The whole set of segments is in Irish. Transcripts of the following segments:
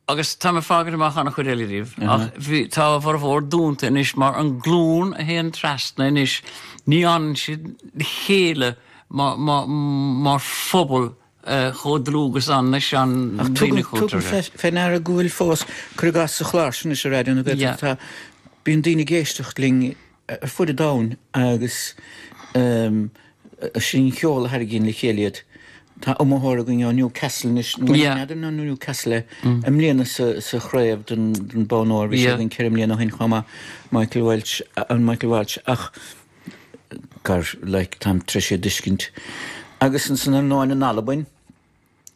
Agus tá mé ag fágaint amach an chuid eile díobh. Ach bhí, tá a bhformhór dúnta anois mar an glún a théann trasna anois, ní fhanann siad le chéile mar phobal chomh dlúth is an leis an daoine cultúrtha. Tugaim fé ndeara go bhfuil fós, cuir i gcás sa chlár sin anois ar Raidió na Gaeltachta, tá, bíonn daoine ag éisteacht linn, ar fud an domhain agus sin an ceol a tharraingíonn le chéile iad. Tá iomaitheoir againn ó Newcastle anois, n'fheadar an ó Newcastle é, i mbliana sa chraobh don Bonn Óir, bhí sé againn ceithre mbliana ó shin chomh maith, Michael Welch, an Michael Walsh ach gur like táim tréis iad a thuiscint. Agus ansan ar ndóin in Albain,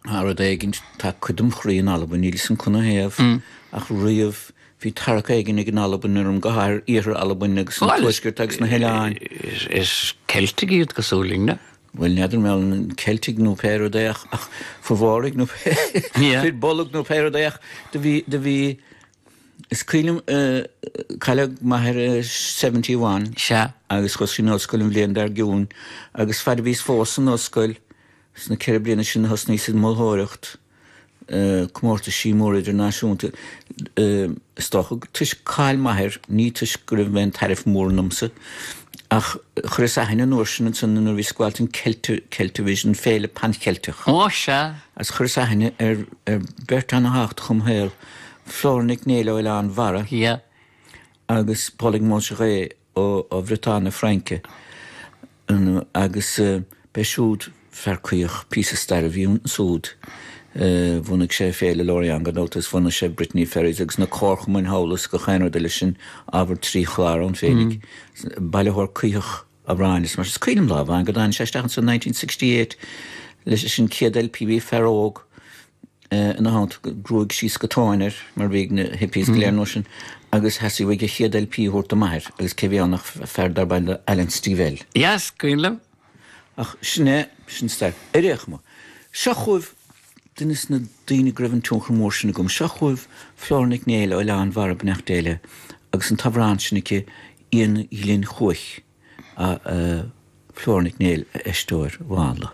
Tá rud éigin, tá cuid dem' chroí in Albain. Níl fhios agam cad ina thaobh ach riamh bhí tarrac éigin ag an Albain orm, go háirithe iarthar Alban agus an tuaisceart agus na hoileáin. Is Ceiltigh iad cosúil linn, na? Bhuel, n'fheadar an bhfuil an Ceiltigh nó pé rud é ach fir Bharraigh nó fir Bolg nó pé rud é ach do bhí, do bhí, is cuimhin liom cailleadh m'athair i seventy one agus chuas ar an ollscoil an bhliain dár gcionn agus fad a bhíos fós san ollscoil, Sna ceithre bliana sin a thosnaíos ag moltóireacht comórtaisí móra idirnáisiúnta. Is dócha gur toisc cáil m'athair, ní toisc go raibh aon tairbhe mór ionamsa, ach chuireas aithne an uair sin ansan nuair a bhíos ag gabháilt don Celtavision, Féile Pan Cheilteach. Ó, sea. Agus chuireas aithne ar beirt ana thábhachtach dom shaol, Flóra Nic Néill ó Oileán Bharra. Yeah. Agus Polig Monjarret ó Bhriotáin na Fraince agus b'é siúd fear caithiseach píosa stair a bhí ansúd bhunaigh sé Féile Lorient gan dabht agus bhunaigh sé Brittany Ferries agus na comharchumainn thall is gach aon rud eile sin ábhar trí chlár ann féinig bailitheoir caithiseach amhrán is mar sin is cuimhin liom lá amháin go dtáinig sé isteach anso nineteen sixty eight leis an chéad LP bhí fear óg ina theannta gruaig síos go tóin air mar bhí ag na hippies go léir an uair sin agus theastaigh uaidh a chéad LP a thabhairt do m'athair agus cé bhí ann ach fear darb ainm dó Alan Stivell. Yes, cuimhin liom. Ach sin é, sin stair. Ar aon chuma, seo chugaibh duine de na daoine go raibh an tionchar mór sin agam. Seo chugaibh Flóra Nic Néill, Oileán Bharraigh, beannacht Dé léi, agus an t-amhrán sin aici Iain Ghlinn Cuaich, Flóra Nic Néill a éisteoir mhánla.